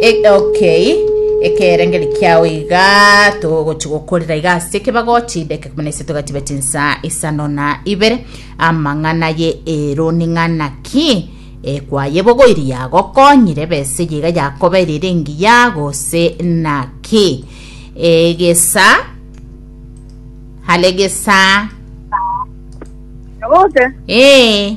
E- okay ekerengeri kiao iga togochi gokorera iga ase ekebago chideke kumi na ise togatiba chinsa isano na ibere amang'ana ye ero ning'ana ki ekwayebogoiri yagokonyire bese yiga yakoberire engiya gose naki egesa hare gesa Nabote, ee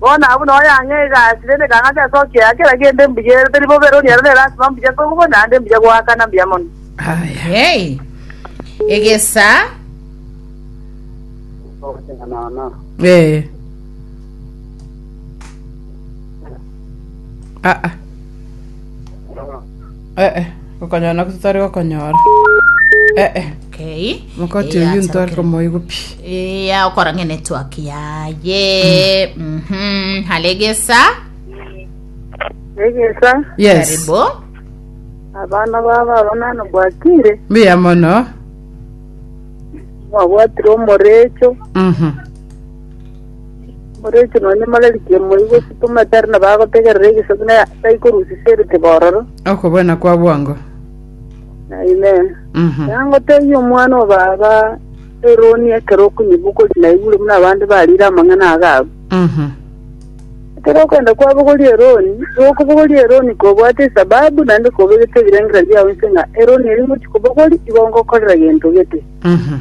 Bono abwo nao yang'a egasi, rende ekang'a ase ase okieya kera kende mbuya ere teri bobe, rori ero nere asima mbuya kogwa naende mbuya goakana mbuya mono. Aya. Yei. Egesa. Eh. Ah ah. Eh, gokonyora nako totari gokonyora. Eh, Okay. mokoti Eh, oyio answer ntware okay. komoigwa pi. Iya okora ng'e network yaye Mhm, halegesa egesa Yes. karibu abana baba abonano bwakire Mbuya mono. mwabwatire omorecho Mhm. Orwechire nonya mararikia moigwe tomatere na bagotegerera egesaku na taikorusisa erite bororo. Okobwena kwa bwango. Amen. Mhm. Yangotebi omwana wa baba eroni ekero okunyibukori na igure muna abande barire amang'ana agabu. Mhm. Ekero okwenda kwabogori eroni, gokobogori eroni kobwate esababu naende kobegete ebirengera biao inse ng'a eroni eri ngochi kobogori igo ngokorera gento gete. Mhm.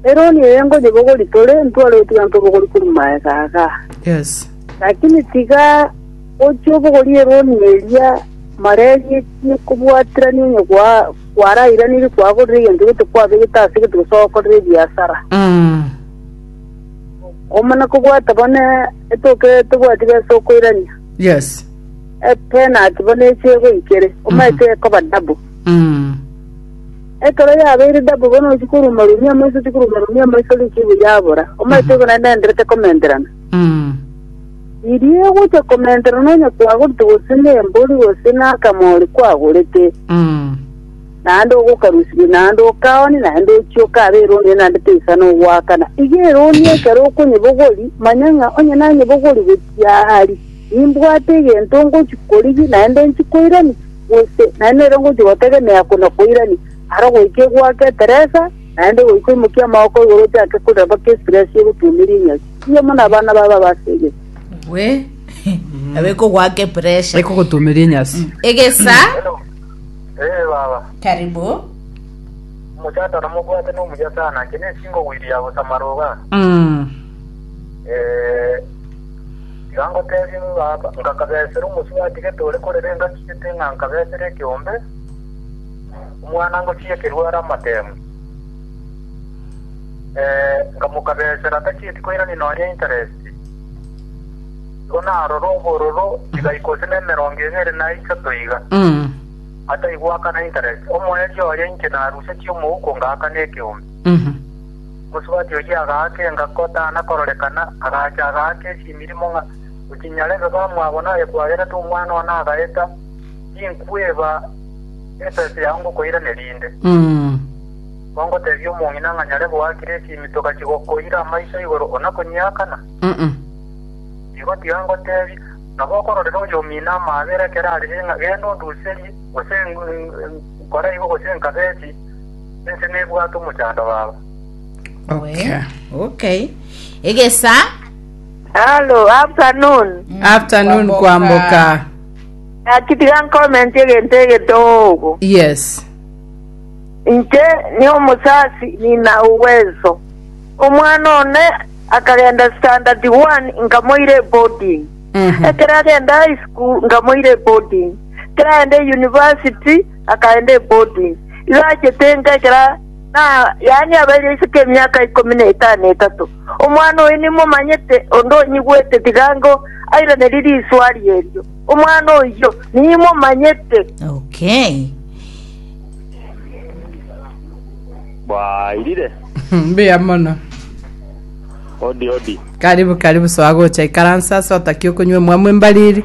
Eroni eye ngonyebogori tore, ntware gotiga ntobogori korwa maega aga. Yes. Lakini tiga gochia obogorie eroni eria mareri ekie kobwaterania onye gwa- gwarairanirie kwagorire egento gete kwabegete ase gete gose ogokorera ebiasara. Mm. Omana kobwata bone etoke tobwati besa okoirania. Yes. Epenati bone eche egoikere, omaete ekoba double. Mm. Ekero yabeire dabu bono gochia koruma rumi amoiso gochia koruma rumi amoiso rikiibu yabora, omoeto obe naende nenderete komenterana. Mm. Riria egochia komenterana onye kwagorete gose nembori gose nakamori kwagorete, Mm. naende ogokarusibia naende okaoni naende ochia okabe eroni eye naende teisana ogoakana. Iga eroni ekero okonyebogori, manya ng'a onye nanyebogori gochia ahari. Nimbwate egento ngochia korigia, naende nchie koirania, gose naende nere ngochia gotegemea kona koirania, aro goika egwake eteresa, naende goika oimokie amaboko igoro otiake korira mpaka estress egotuomeria enyasi. Mbuya mono abana baba abasegete. Gwe nabo ekogwaka epressure. Ekogotuomeria enyasi. Egesa, Hello. Eh baba. karibu. Omochando na mobwate no muya sana. Kene singo wiria gusama roga. Mm. Eh Tiga ngoteebie ng'a baba, Inga nkabesera omosio gwatigete ore korere engachiete ng'a nkabesere ekeombe, omwana ngochiekerwe are amateemwa. Ee, nkamokabesera atachieti koirania nonya interesti. Igo narore obororo chigaika gose nemerongo ebere na isato iga, ataigwakana interesti. Omoerio oye inche narusetie omouko ngaakana ekeombe. Omosubati oyio agaaka engako tana kororekana, agacha agaaka echimirimo ng'a ochinyarebe bamwabo naye kwagera tomwana one agaeta, tinkweba ebesa yao ngokoiraneria inde. Kongotebia omong'ina ng'a nyarebe oakire echimi togachi gokoira amaiso igoro onakonyakana? Igo tiga ngotebie. Nabo okororera oyomino amaabera ekero arire ng'a genda onduserie, gose nkore igo gose nkabe echii. Inche nebwate omochando baba. Okay. Okay. Egesa. Hello, afternoon. Afternoon kwamboka. Nakitiga comment egento egetogo. Yes. Inche ni omusasi nina uwezo. Omwana one akagenda standard 1 nkamoire boarding. Mhm. Ekero agenda high school nkamoire boarding. Ekero agenda university akaenda eboding. Igo achete enka ekero na yaani abeire isiko emiaka ikomi na etano etato. Omwana oye nimomanyete onde onyigwete tigango airaneri riswari erio. Omwana oyio nimomanyete. Okay. Bwairire. Mbuya mono. Odi odi. Karibu karibu soa gocha ikaransa ase otakia okonywa emwamu embariri.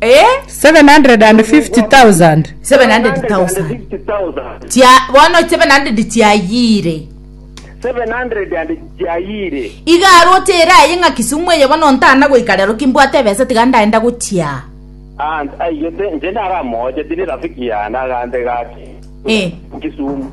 Eh, 750,000 700,000 chia bono 700 chiayiire 700 and chiayiire iga aroche ere aye ng'a kisumu eye bono ntana goika rero kimbwate ebesa tiga ndaenda gochia and aigete nche naramooche tiri rafiki yane agante gaki Eh. kisumu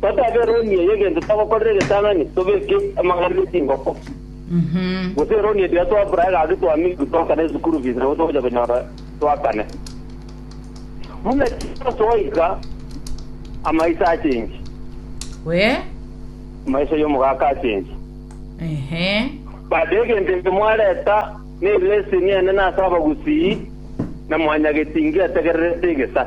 Toteeba eroni eye egento togokorera egetang'ani, tobeke amang'ana ne chingoko, gose eroni etira twabura egasi twamiirwe twakana esukuru fees nabo togocha konyora twakane. Buna Jeso goika, amaiso achengi, We. amaiso y'omogaka achengi. Ehe. Baada egento eke mwareta nereseni enene ase abagusii, na mwanyagetingi ategererete egesa.